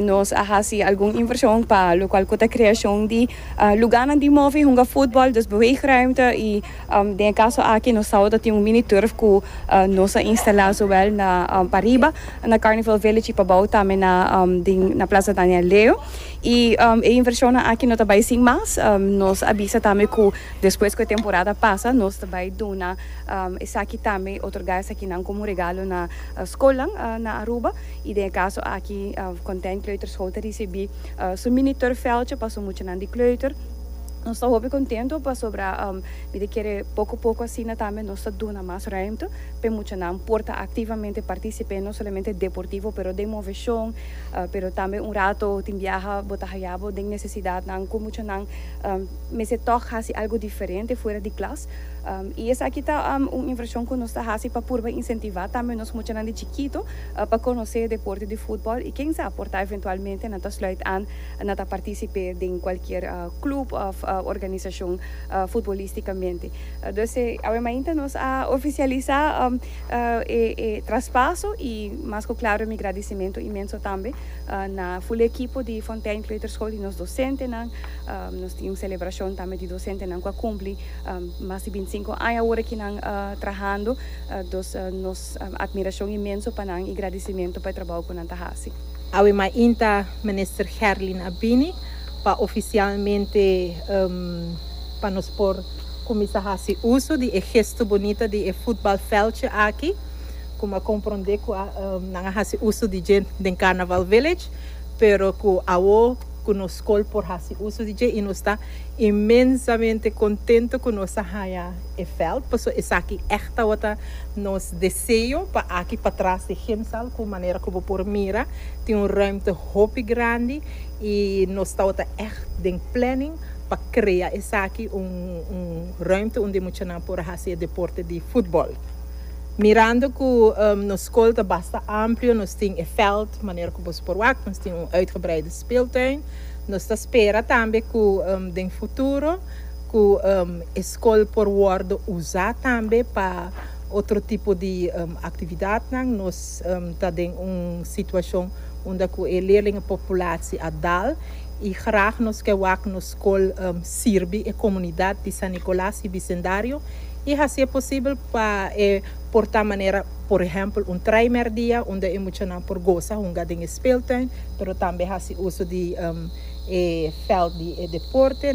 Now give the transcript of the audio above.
Nos a hasi algun invershon pa lokual ku ta kreashon di lugánan di move hunga futbòl, dus beweegruimte i den e kaso aki nos tabata tin un mini turf ku nos a instalá zowel na pariba na Carnival Village i pabou tambe na den na Plaza Daniel Leo. I e invershonnan aki no ta bai sin mas, nos a bisa tambe ku despues ku e temporada pasa nos ta bai duna esaki tambe otorgá esakinan komo regalo na skolnan na Aruba. y den e caso aki Content Kleuterschool ta ricibi su mini turfveldje pa su muchanan di kleuter. Nos ta hopi contento pasobra mi ta kere poco poco asina tambe nos ta duna mas ruimte pa e muchanan por ta activamente participe no solamente deportivo pero den movecion pero tambe un rato tin biaha bo ta haya bo den necesidadnan cu muchanan mester toch haci algo diferente fuera di klas. I esaki ta un invershon ku nos ta hasi pa purba insentivá tambe nos muchanan di chikitu pa konosé e deporte di futbòl i ken sa por ta eventualmente nan ta sluit an nan ta partisip'é den kualkier klup òf organisashon futbolístikamente. Dus awe mainta nos a ofisialisá e traspaso i mas ku klaro mi gradisimentu inmenso tambe na ful ekipo di Fontèin Kleuterschool i nos dosentenan, Nos tin un selebrashon tambe di dosentenan ku a kumpli mas di binti sinku aña awor aki nan trahando. Dus nos atmirashon inmenso pa nan i gradisimentu pa e trabou ku nan ta hasi. Awe mainta Minister Gerlin a bini pa ofisialmente pa nos por kuminsa hasi uso di e gesto bonita di e futbalvèltje aki ku mi a kompronde ku nan a hasi uso di dje den Carnaval Village pero ku awor ku nos skol por hasi uso di dje i nos ta inmensamente kontento ku nos a haña e vèlt paso esaki ègt tabata nos deseo pa aki patras di Gimsal ku manera ku bo por mira tin un rùmte hopi grandi i nos tabata ègt den planning pa krea esaki un rùmte unda muchanan por a hasi e deporte di futbòl. Mirando cu nos school ta basta amplio, nos tin e veld, manera cu boso por wak, nos tin un uitgebreide speeltuin. Nos ta spera tambe cu den futuro cu e school por wordo uza tambe pa otro tipo di actividadnan. Nos ta den un situacion unda cu e leerlingenpopulatie a dal y graag nos ke wak nos Col sirbi e comunidad di San Nicolas y bicendario y hacié posibel pa e por ta manera por ehempel un trae merdia unda e muchanan por goza hunga den e speeltuin pero tambe haci uso di e veld di e deporte.